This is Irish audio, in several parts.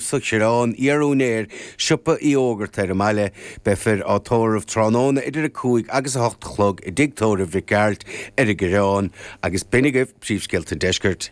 Sa Choireán, iar-úinéir siopa Uí Fhógartaigh ar an mbaile. Beifear á tórramh tráthnóna idir a cúig agus a hocht a chlog i dtigh tórraimh Mhic Gearailt ar an gCoireán. Agus b'in agaibh príomhscéalta an Deiscirt.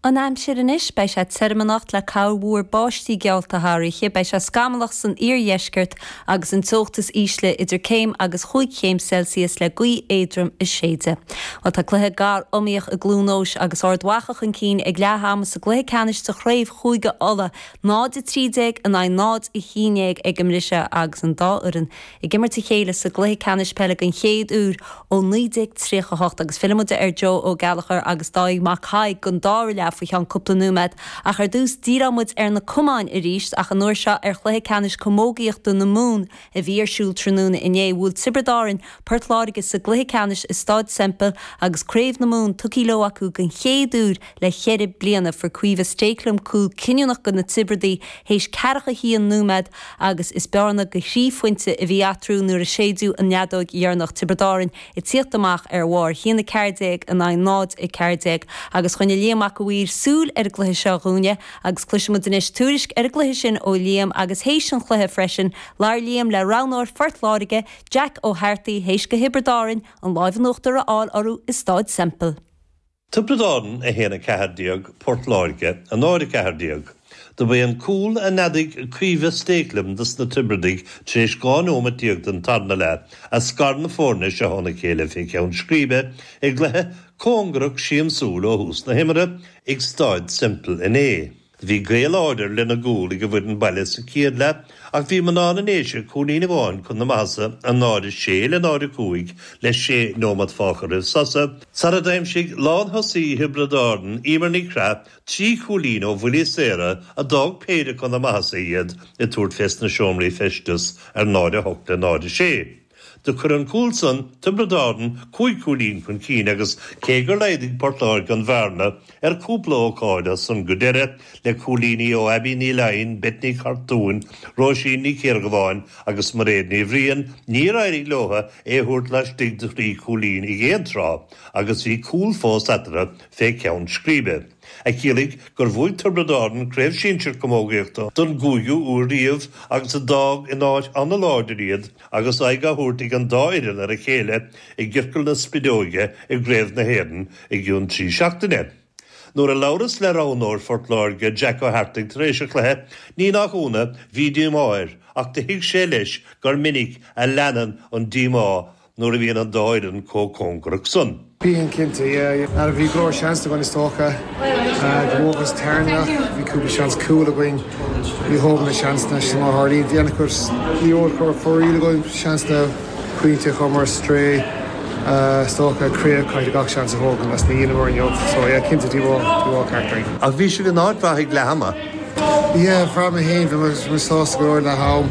An aimsir anois, beidh sé tirim anocht le corrmhúr báistí geallta thar oíche. Beidh sé scamallach san iardheisceart agus an teocht is ísle idir céim agus cúig chéim Celsius le gaoth éadrom ag séideadh. Bhuel, tá cluiche gar iomaíoch i gCluain Eois agus Ard Mhacha chun cinn ag leath ama sa gcluiche ceannais de chraobh Chúige Uladh, 0-13 in aghaidh 0-11 ag an mbriseadh agus an dá fhoireann ag imirt a chéile sa gcluiche ceannais peile den chéad uair ó 1938 agus fillfidh muid ar Joe Ó Gallchóir agus Dáithí Mac Thaidhg don dara leath faoi cheann cúpla nóiméad. Ach ar dtús, díreoidh muid ar na camáin arís, ach an uair seo ar Chluiche Ceannais Camógaíochta na Mumhan a bhí ar siúl tráthnóna inné. Bhuail Tiobraid Árann Port Láirge sa gcluiche ceannais i Stáid Semple agus Craobh na Mumhan tugtha leo acu den chéad uair le ceithre bliana. Fuair Caoimhe Stakelum cúl cinniúnach do na Tiobradaigh théis ceathracha haon nóiméad agus is bearna go thrí phointe a bhí eatarthu nuair a séideadh an fheadóig dheireanach. Tiobraid Árann. ag tíocht amach ar bharr 1, 14 in aghaidh 0, 14, agus choinnigh Liam Mac a' Mhaoir súil ar an gcluiche seo dhúinne agus cloisfidh muid anois tuairisc ar an gcluiche sin ó Liam agus théis an chluiche freisin labhair Liam le roghnóir Phort Láirge, Jack Ó hEartaigh, théis go Thiobraid Árann an láimh in uachtar a fháil orthu i Stáid Semple. Tiobraid Árann 1, 14, Port Láirge 0, 14. Do b'é an cúl a neadaigh Caoimhe Stakelum dos na Tiobradaigh tar éis 12 nóimeat den tarna leath a scar na foirne seo óna chéile fé cheann scríbe i gcluiche cóngarach siamsúil ó thús na himeartha ag Stáid Semple inné. Bhí gaoth láidir lena gcúl ag an bhfoireann baile sa chéad leath ach bhí mná na nDéise cúilín amháin chun na maitheasa, 0:06 le 0:05 le sé nóimeat fágtha roimh sosa, sara d'aimsigh lán-thosaí Thiobraid Árann, Eimear Nic Craith, trí chúilín ó bhuillí saora a d'fhág péire chun na maitheasa iad ag tabhairt fés na seomraí feisteas ar 0:08 le 0:06. Do chuir an cúl san Tiobraid Árann cúig cúilín chun cinn agus cé gur laghdaigh Port Láirge an bhearna ar cúpla ócáid as san go deire le cúilíní ó Abbie Ní Fhloinn, Beth Nic Chartúin, Róisín Ní Chiardhubháin agus Mairéad Ní Bhriain, níor éirigh leotha é a thabhairt laistigh de thrí cúilín ag aon tráth agus bhí cúl fós eatarthu fé ceann scríbe. a chiallaigh gur bhuaigh Tiobraid Árann Craobh Sinsear Camógaíochta don gcúigiú uair riamh agus a d'fhág in áit an-láidir iad agus aghaidh á thabhairt ag an dá fhoireann ar a chéile i gCiorcal na Spideoige i gCraobh na hÉireann i gcionn trí seachtaine. Nuair a labhras le roghnóir Phort Láirge, Jack Ó hEartaigh, tar éis an chluiche, ní nach ionadh, bhí díomá air ach do thuig sé leis gur minic a leanann an díomá nuair a bhíonn an dá fhoireann chomh cóngarach san. Bíonn, cinnte, yeah, yeah. Mar a bhí go leor seans againn is dócha. Go bhfágfas tearmann, bhí cúpla seans cúl againn, níor thógamar na seansanna sin má tharlaíonn. Bhí ana chuid, ní raibh cor fóraoil againn, seansanna, pointí a chuireamar ar strae is dócha, críoch, caithfidh gach seans a thógaint is níor dheineamar inniu. So, yeah, cinnte, díomá, díomá ceart againn. Ach bhí sibh in áit mhaith ag leath ama. Yeah, bhraith mé féin, bhí mé sásta go leor leath am.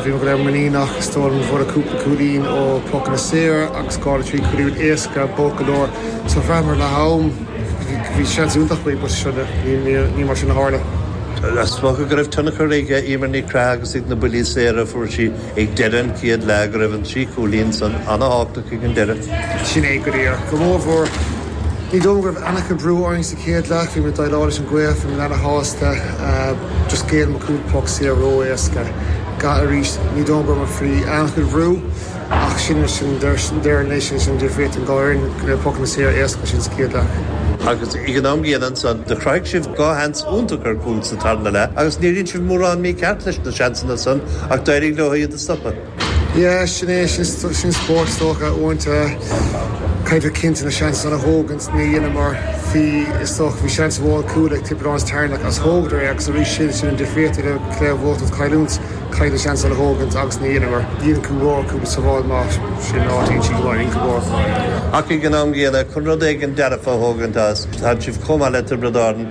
Bhí muid go léir muiníneach is dóigh liom go bhfuaireadar cúpla cúilín ó pocanna saora agus dhá nó trí cúilín ró-éasca, b'olc go leor. So bhraitheamar leath am, bhí seans iontach againn but sure ní mar sin a tharla. Is dócha go raibh tionchar ag Eimear Nic Craith agus ag na buillí saora a fuair sí. Ag deireadh an chéad leath go raibh an trí chúilín san an-thábhachtach ag an deireadh. Sin é go díreach. Go mórmhór, ní dóigh go raibh an-chuid brú orainn sa chéad leath. Bhí muid ag déileáil leis an gcluiche, bhí muid ana-shásta. Just ghéill muid cúpla poc saor ró-éasca. Ga, Arís, ní dóigh go raibh muid faoi an-chuid bhrú ach sin é sa deireadh anois. Sin an difríocht an dá fhoireann, go raibh pocanna saor éasca sin sa chéad leath. Agus ag an am gcéanna ansan, do chruthaigh sibh dhá sheans iontach ar chúil sa tarna leath agus níor dhein sibh mórán mícheart leis na. seansanna ansan ach d'éirigh leo iad a stopadh. Yeah, sin é, sin spórt, is dócha. Uaireanta caithfear cinnte na seansanna a thógaint, níor dheineamar, bhí, is dócha, bhí seans mhór cúl ag Tiobraid Árann sa tarna leath agus thógadar é agus arís sin, sin an difríocht idir cluiche a bhuachaint agus cailliúint, caithfidh na seansanna a thógaint agus níor dheineamar, dhein tú rómhaith cúpla sabháil maith, sin áit inti go maith, in go mór go maith. Ach ag an am gcéanna, chun rud éigin dearfa a thógaint as, tá sibh chomh maith le Tiobraid Árann,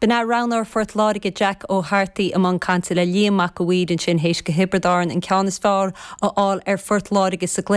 B'in é roghnóir Phort Láirge Jack Ó hArtaigh i mbun cainte le Liam Mac a' Mhaoir ansin théis do Thiobraid Árann an ceann is fearr a fháil ar Phort Láirge sa gcluiche